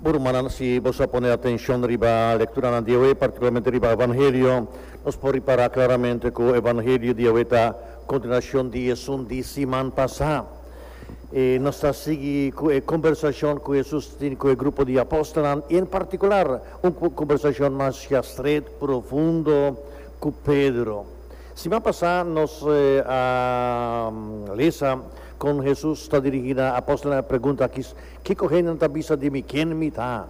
Bo rumannan, si bo sa pone atenshon riba lekturanan di awe, partikularmente riba Evangelio, nos por ripará klaramente ku Evangelio di awe ta kontinuashon di esun di siman pasá. E nos ta sigui ku e kombersashon ku Hesus tin ku e grupo di apòstelnan, i en partikular un kombersashon mashá stret, profundo ku Pedro. Siman pasá nos a lesa Kon Hesus ta dirigí na apòstelnan e pregunta akí, Kiko hendenan ta bisa di mi ken mi ta?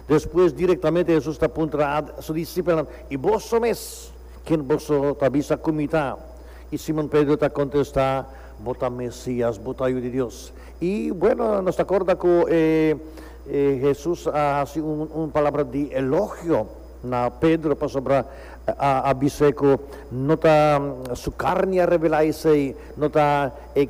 Despues direktamente Hesus ta puntra na Su disipelnan, I boso mes, ken boso ta bisa ku mi ta? I Simon Pedro ta kontestá, Bo ta Mesias, bo ta Yu di Dios. I bueno, nos ta korda ku Hesus a hasi un palabra di elogio. Na Pedro, pasobra a bis'é ku no ta su karni a rebelá esei, no ta e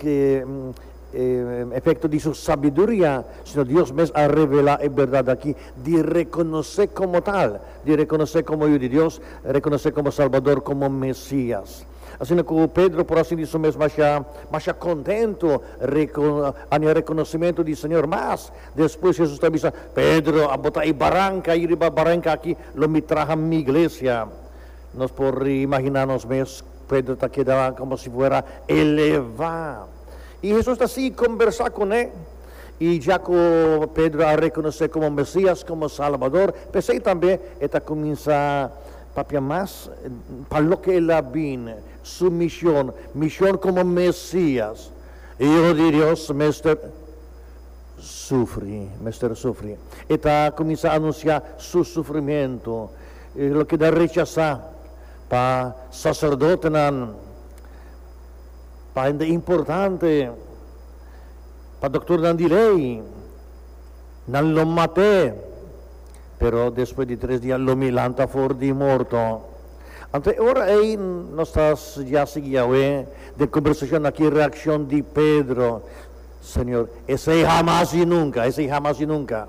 efekto di su sabiduria, sino Dios mes a rebelá e bèrdat aki di rekonos'é komo tal, di rekonos'é komo Yu di Dios, rekonos'é komo Salbador, komo Mesias. Asina ku Pedro por a sinti su mes mashá, mashá kontentu, a hende a rekonosimentu di Señor mas. Despues Hesus ta bisa, Pedro, abo ta e baranka ahi, riba baranka aki lo mi traha mi iglesia. Nos por imaginá nos mes, Pedro ta keda komo si fuera elevá. I Hesus ta sigui kombersá kuné, i dja ku Pedro a rekonosé komo Mesias, komo Salbador, p'esei tambe e ta kuminsá papia mas pa loke el a bin, su mishon, mishon komo Mesias, Hijo di Dios, mester. Sufri, mester sufri. E ta kuminsá anunsiá su sufrimentu. E lo keda rechasá pa saserdotenan, pa hende importante, pa doktornan di lei. Nan lo mat'é, pero despues di tres dia lo mi lanta for di morto. Anto e ora ei nos ta studiá sigui Yahweh den kombersashon akí, reakshon di Pedro. Señor, esei hamas i nunka, esei hamas i nunka.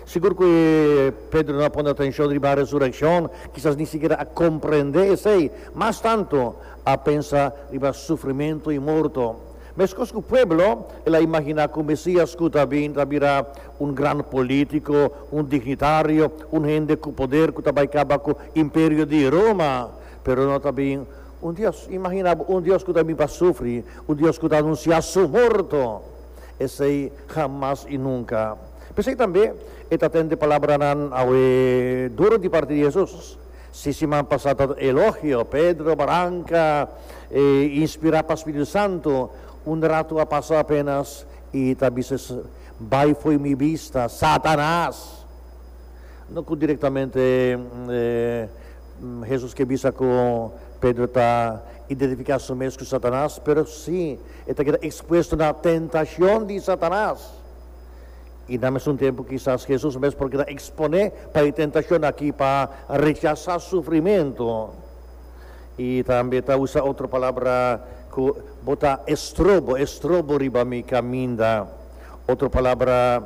Sigur ku e Pedro no a pone atenshon riba resurekshon, kisas ni sikiera a komprendé esei, mas tantu a pensa riba sufrimentu i morto. Meskos ku pueblo, el a imaginá ku Mesias ku ta bin ta bira un gran polítiko, un dignitario, un hende ku poder ku ta bai kaba ku Imperio di Roma, pero no ta bin Un Dios, imagina bo un Dios cu ta bin pa sufri, un Dios cu ta anuncia su morto, esey jamas y nunca. P'esey tambe e ta tende palabranan awe duro di parti di Jesús. Si siman pasá ta elogio, Pedro, Branca, e inspirá pa Spiritu Santu, un ratu a pasa apenas y ta bisa, Bay fo'i mi bista, Satanas! No cu directamente. Hesus ke bisa ku Pedro ta identifiká su mes ku Satanas, pero si e ta keda ekspuesto na tentashon di Satanas. I na mesun tempu kisas Hesus mes por keda eksponé pa e tentashon akí pa rechasá sufrimentu. I tambe ta usa otro palabra ku bo ta estrobo, estrobo riba mi kaminda. Otro palabra.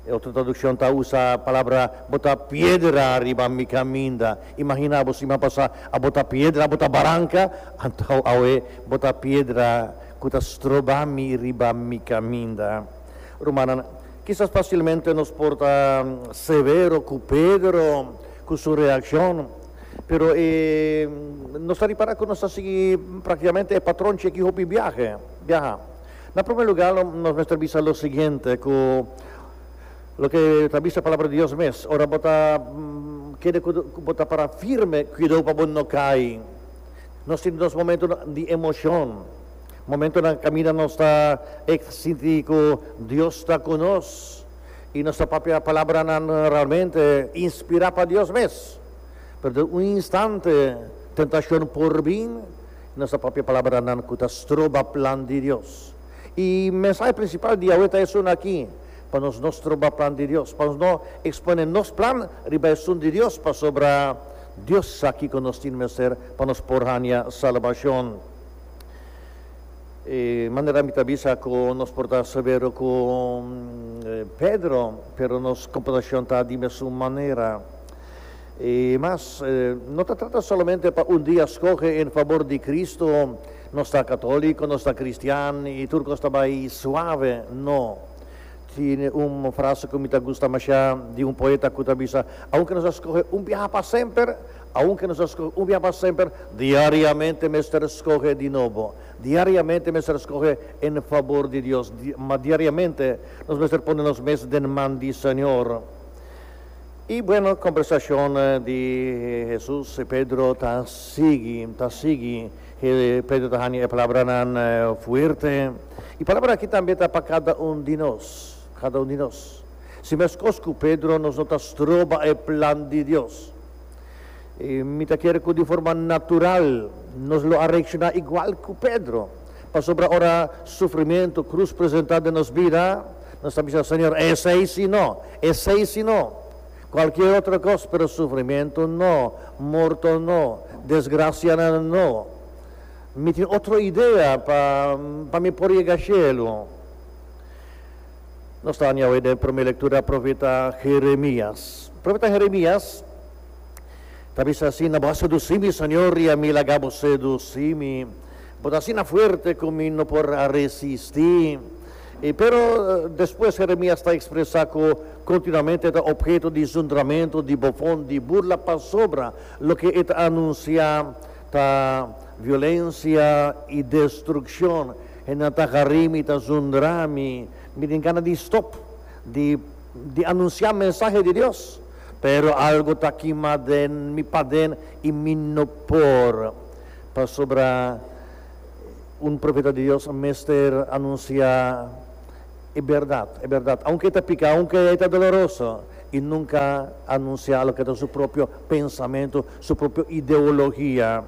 E otro traduccion ta usa palabra bo ta piedra riba mi caminda. Imagina abo siman pasa abo ta piedra, abo ta baranca, anto awe bo ta piedra cu ta stroba mi riba mi caminda. Rumannan, kisas facilmente nos por ta severo cu Pedro cu su reaccion, pero e nos ta ripara cu nos ta sigui practicamente e patronchi aki hopi biaha. Na prome lugar lo nos mester bisa lo siguiente cu loke ta bisa palabra di Dios mes, ora bo ta kere cu bo ta para firme cuidao pa bo no cay. Nos tin nos momento di emocion, momento na caminda nos ta e sinti cu Dios ta cu nos y nos ta papia palabranan realmente inspira pa Dios mes, pero den un instante tentacion por bin. Nos ta papia palabranan ku ta stroba plan di Dios. I mensahe prinsipal di awe ta esun aki, Pa nos no stroba plan di Dios, pa nos no ekspone nos plan riba esun di Dios, pasobra Dios sa kiko nos tin mester pa nos por haña salbashon. E manera mi ta bisa ku nos por ta severo ku Pedro, pero nos komportashon ta di mesun manera. I mas, no ta trata solamente pa un dia skohe en fabor di Kristu, nos ta katóliko, nos ta kristian i tur kos ta bai suave. No. Tene un frase ku mi ta gusta mashá di un poeta ku ta bisa, Aunke nos a skohe un biaha pa semper, aunke nos a skohe un biaha pa semper, diariamente mester skohe di nobo. Diariamente mester skohe en fabor di Dios, ma diariamente nos mester pone nos mes den man di Señor. I bueno kombersashon di Hesus i Pedro ta sigui, ta sigui. Pedro ta hani e palabranan fuerte. E palabra aki tambe ta pa kada un di nos, kada un di nos. Si meskos ku Pedro, nos no ta stroba e plan di Dios. Mi ta kere ku di forma natural nos lo a reakshoná igual ku Pedro. Pasobra ora sufrimentu, krus presentá den nos bida, nos ta bisa, Señor, esei sí no, esei sí no. Kualkier otro kos, pero sufrimentu no, morto no, desgrasianan no. Mi tin otro idea pa pa mi por yega shelu. Nos ta haña awe den promé lektura profeta Jeremias. Profeta Jeremias ta bisa asina, Bo a sedusí mi, Señor, i ami laga bo sedusí mi. Bo ta asina fuerte ku mi no por a resisti. I pero despues Jeremias ta ekspresá ku kontinuamente e ta opheto di zundramentu, di bofon, di burla pasobra loke e ta anunsiá ta violensia i destrukshon. Hendenan ta harí mi, ta zundrá mi. Mi tin gana di stòp di di anunsiá mensahe di Dios, pero algu ta kimá den mi paden i mi no por. Pasobra un profeta di Dios a mester anuncia e berdad, e berdad, aunke e ta pica, aunke e ta doloroso, i nunca anuncia loke ta su propio pensamentu, su propio ideologia.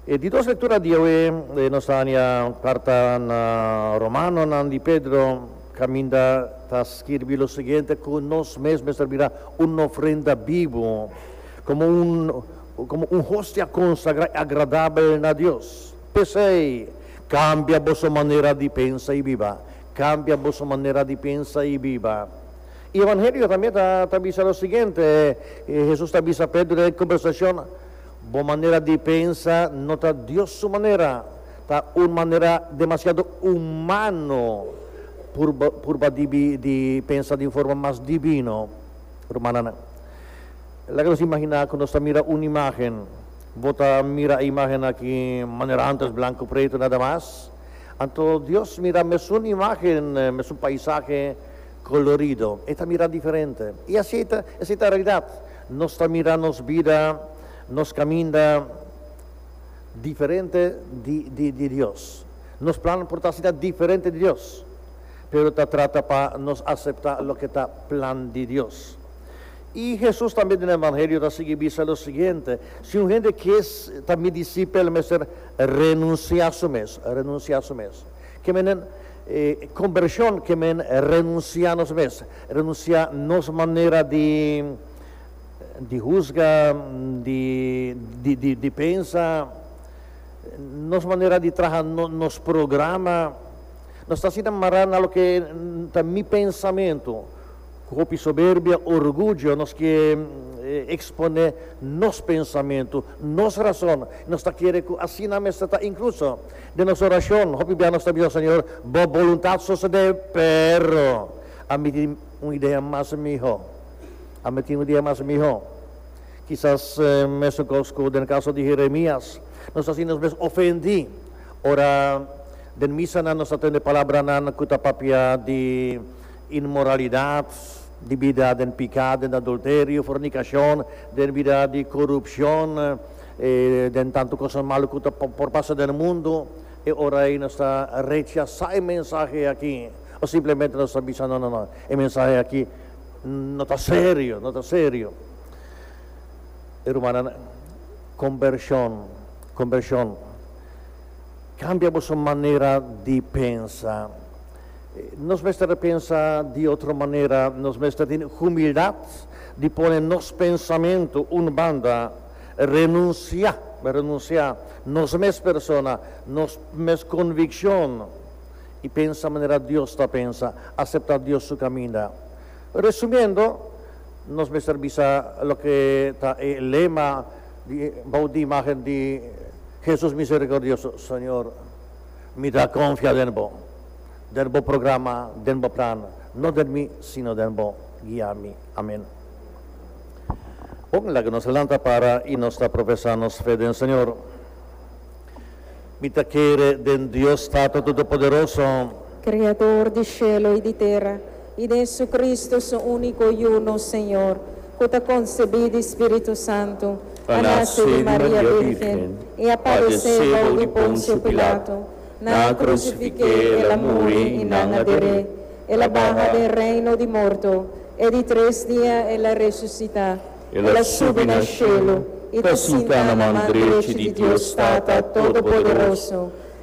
E di dos lectura diawe nos ta hanja carta na Romanonan di Pedro, caminda ta skirbi lo siguiente, cu nos mes mester bira un ofrenda bibu, como un. komo un hostia konsagrá i agradabel na Dios. P'esei, kambia boso manera di pensa i biba. Kambia boso manera di pensa i biba. E Evangelio tambe ta bisa lo siguiente, Hesus ta bisa Pedro den e kombersashon, Bo manera di pensa no ta Dios su manera, ta un manera demasiado humano purba di pensa di un forma mas divino. Rumannan. Laga nos imaginá ku nos ta mira un imágen. Bo ta mira e imágen aki manera antes, blanku i pretu nada mas. Anto Dios mira mesun imágen, mesun paisahe kolorido. E ta mira diferente. I esei ta esei ta realidat. Nos ta mira nos bida, nos kaminda diferente di di di Dios. Nos plan por ta asina diferente di Dios, pero ta trata pa nos aseptá loke ta plan di Dios. I Hesus tambe den e Evangelio ta sigui bisa lo siguiente, Si un hende ke ta mi disipel, mester renunsiá su mes, renunsiá su mes. Ke menen e kombershon ke men renunsiá nos mes, renunsiá nos manera di di husga, di di di di pensa, nos manera di traha nos programa. Nos ta asina mará na loke ta mi pensamentu. Ku hopi soberbia, orguyo, nos ke eksponé nos pensamentu, nos rason, i nos ta kere ku asina mester ta. Inkluso den nos orashon, hopi bia nos ta bidó, Señor, Bo boluntat sosodé, pero ami tin un idea mas mihó. Ami tin un idea mas mihó. Kisas mesun kos ku den e kaso di Jeremias, nos ta sinti nos mes ofendí ora den misanan nos ta tende palabranan ku ta papia di. inmoralidat, dibida den piká, den adulterio, fornikashon, den bida di korupshon, i den tantu kos malu ku ta por pasa den e mundu. E ora ei nos ta rechasá e mensahe akí o simplemente nos ta bisa, No, no, no, e mensahe akí no ta serio, no ta serio. E rumannan, kombershon, kombershon kambia boso manera di pensa. Nos mester ta pensa di otro manera, nos mester ta tene humildat di pone nos pensamentu un banda, renunsiá, renunsiá nos mes persona, nos mes konvikshon i pensa manera Dios ta pensa, aseptá Dios su kaminda. Resumiendo, nos mester bisa loke ta e lema di bou di imágen di Hesus Miserikordioso, Señor, Mi ta konfia den Bo, den Bo programa, den Bo plan, no den mi, sino den Bo. Guia mi. Amen. Bon, laga nos lanta para i nos ta profesá nos fe den Señor. Mi ta kere den Dios Tato Todopoderoso. Kreador di shelo i di tera. I Jesucristo, su unico Yu nos Señor, cu ta concebi di Spiritu Santu, a nace di Maria Virgen i a padece bou di Poncio Pilato, nan a crucifiqué el a muri i nan a deré, el a baha den reino di morto, e di tres dia el a resucita, el a subi na cielo i ta sinta na man drechi di Dios Tata Todopoderoso.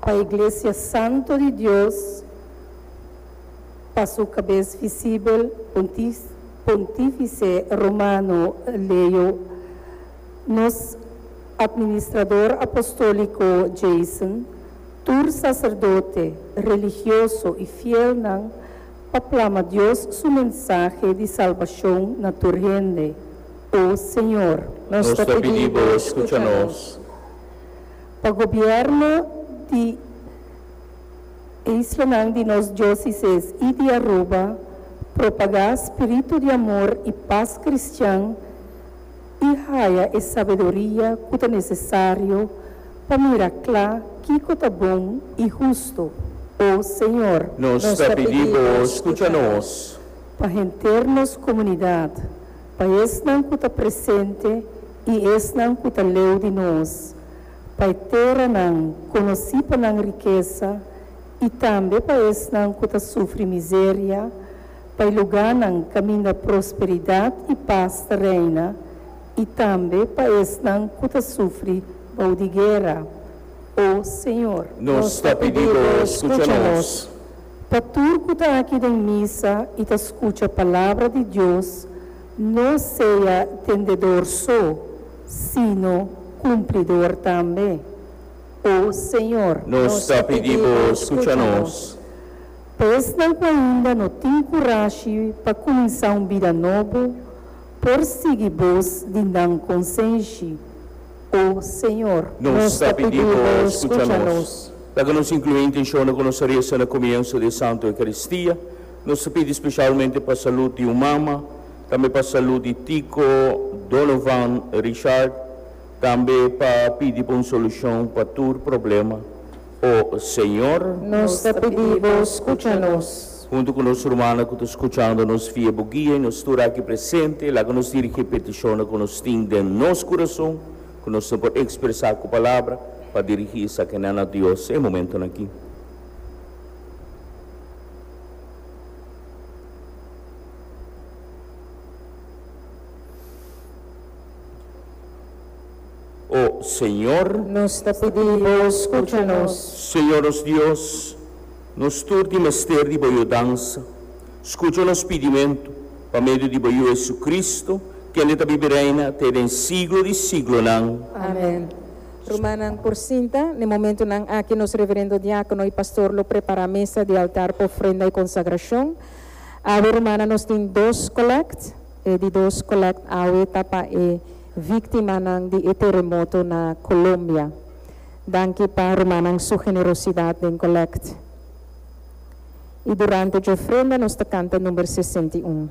pa e glesia santo di Dios, pa su cabes visibel, Pontifice Romano Leo, nos Administrador Apostolico Jason, tur sacerdote, religioso y fielnan, pa plama Dios su mensahe di salbacion na tur hende, O Señor. Nos ta pidi Bo scucha nos. pa gobierno di isla-nan di nos diosises i di Aruba propagá spiritu di amor i pas kristian i haya e sabedoria ku ta nesesario pa mira kla kiko ta bon i hustu. O Señor, nos ta pidi Bo skucha nos. Pa henter nos komunidat, pa esnan ku ta presente i esnan ku ta leu di nos. pa e teranan konosí pa nan rikesa i tambe pa esnan ku ta sufri miseria, pa e lugánan kaminda prosperidat i pas ta reina, i tambe pa esnan ku ta sufri bou di guera. O Señor! Nos ta pidi Bo skucha nos. Pa tur ku ta aki den misa i ta skucha palabra di Dios, no sea tendedor so, Sino cumplidor tambe. O Señor, nos ta pidi Bo scucha nos. Pa esnan cu ainda no tin curashi pa cuminsa un bida nobo, por sigui Bos di nan consenshi. O Señor. Nos ta pidi Bo scucha nos. Laga nos inclui intencionnan cu nos a reza na comienso di e Santo Eucaristia. Nos ta pidi specialmente pa salud di un mama, tambe pa salú di Tico, Donovan, Richard, tambe pa pidi pa un solushon pa tur problema, o Señor. Nos ta pidi bo skucha nos. Huntu ku nos rumannan ku ta skuchando nos via bo guia i nos tur aki presente, laga nos dirigí e petishonnan ku nos tin den nos kurason, ku nos no por ekspresá ku palabra, pa dirigí esakinan na Dios e momentunan aki. O Señor. Nos ta pidi Bo scucha nos. Señor nos Dios, nos tur tin mester di Bo yudansa. Scucha nos pidimentu pa medio di Bo Yu Jesucristo, kende ta bibi reina te den siglo di siglonan. Amen. Rumannan, por sinta. Na e momentunan aki nos reverendo diákono i pastor lo prepará mesa di altar pa ofrenda i konsagrashon. Awe rumana nos tin dos collect, e di dos collect awe ta pa e victimanan di e teremoto na Colombia. Danki pa rumannan su generosidad den collect. Y durante dje ofrenda nos ta canta number sesenta i un.